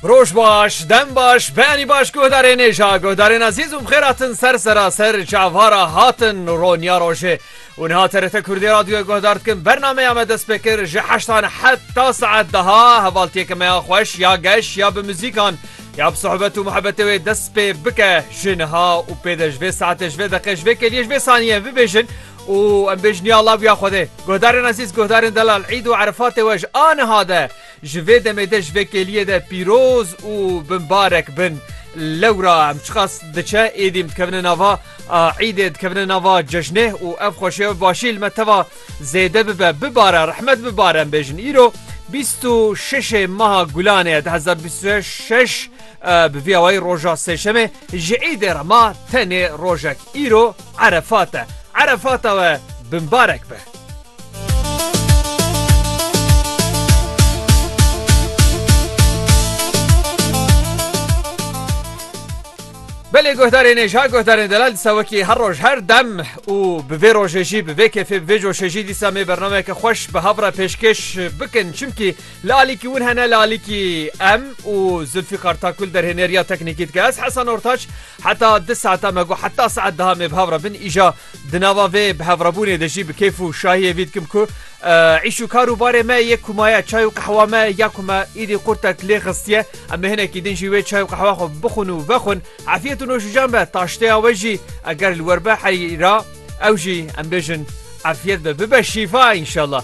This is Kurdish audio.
Roj baş, dem baş, beyanî baş guhdarên êja, guhdarên ezîz û bixêr hatin ser seraser çavara hatin roniya rojê. û niha TRT Kurdî radyoyê guhdar dikin bernameya me dest pê kir ji heştan heta saet daha hevaltiyeke me ya xweş ya geş ya bi muzîkan ya bi sohbet û muhebetê wê dest pê bike ji niha û pê de ji vê saetê ji vê deqê ji vê kêliyê ji vê saniyê bibêjin Û em bê ji niha laviya Xwedê. Guhdarên ezîz, guhdarên delal, îd û erefatê we ji aniha de, ji vê demê de, ji vê kêliyê de pîroz û binbarek bin. Lewra em çiqas diçe êdî em dikevine nava îdê, dikevine nava cejnê û ev xweşiya bi başî li me teva zêde bibe. Bibare, rehmet bibare em bêjin. Îro bîst û şeşê meha Gulanê ye du hezar û bîst û şeş, bi vî awayî roja sêşemê ji îdê re ma tenê rojek. Îro. Erefat e. Erefata we bimbarek be. Belê guhdarê nêja guhdarên delal disa wekî her roj her dem û bi vê rojê jî bi vê kêfê bi vê coşê jî dîsa mê bernameyeke xweş bi hev re pêşkêş bikin çimkî li alîkî win hene li alîkî em û Zilfîqar Takul derhênêriya teknîkî dike ez Hesan Ortaç Heta di saeta me got heta saet duha me bi hev re bin îja di nava vê bi hevrebûnê de jî bi kêf û şahiyê vî dikim ku îş û kar û barê me yê ku maye çay û qehwa me ya ku me îdî qurtek lê xistiye em ê hinekî din jî wê çay û qehwa xwe bixwin û vexwin efiyet û noşijan be taşteya we jî eger li we be herî ra ew jî em bêjin efiyet be bibe şîfa înşallah.